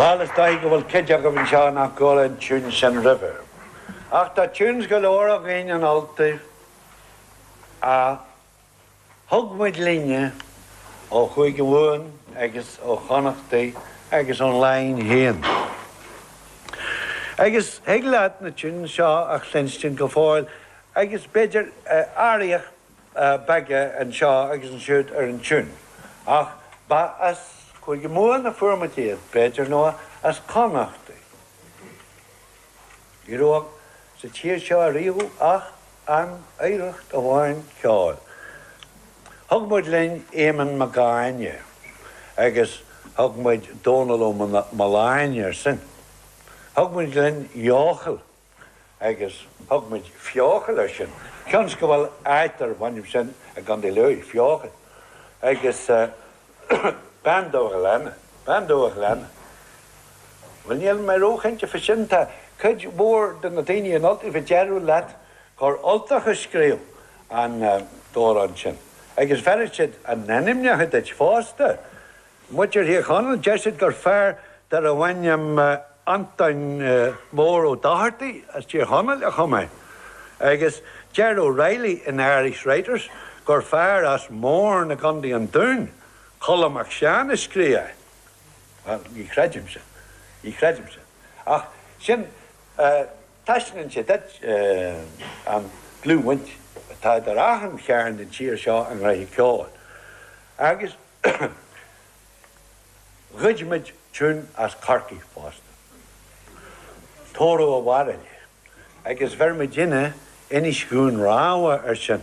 Bhal is dóigh go bhfuil cuid agaibh anseo nach gcuala an tiúin sin roimhe. Ach tá tunes go leor againn in Ultaibh a. Thug muid linne ó Chúige Mumhan agus ó Chonnachtaí agus ón Laighin féin. Agus thig leat na tiúin seo a chluinstin go fóill agus b'fhéidir athraíocha beaga anseo agus ansiúd ar an tiún. Ach ba as Cúige Mumhan a fuair muid iad, b'fhéidir, nó as Connachtaí. Ní raibh sa tír seo ariamh ach an oidhreacht amháin ceoil. Thug muid linn Éamonn Mhágáine agus thug muid Dónal Ó Maoláine ar sin. Thug muid linn Eochaill agus thug muid Feochaill ar sin. Cionn is go bhfuil áit darb ainm sin i gContae Lú, Feochaill. Agus Bean Dubh a' Ghleanna, Bean Dubh a' Ghleanna. Bhuel, níl mé róchinnte fá sin. Tá cuid mhór de na daoine in Ultaibh a déarfadh leat gur Ultach a scríobh an t-amhrán sin. Agus bhéarfadh siad a n-ainmneacha duit fosta. Muintir Thír Chonaill, deir siad gur fear darbh ainm Antoin Mór Ó Dochartaigh as Tír Chonaill a chum é. Agus deir O'Reilly in Irish Writers gur fear as Móirne i gContae an Dúin, Colm Mac Seáin, a scríobh é. Ní chreidim sin. Ní chreidim sin. Ach sin, taispeánann sé duit an dlúthbhaint atá idir achan chearn den tír seo i ngnoithe ceoil. Agus ghoid muid tiún as Corcaigh fosta, Tórramh a' Bhairille, agus bheir muidinne Inis Dhún Rámha ar sin.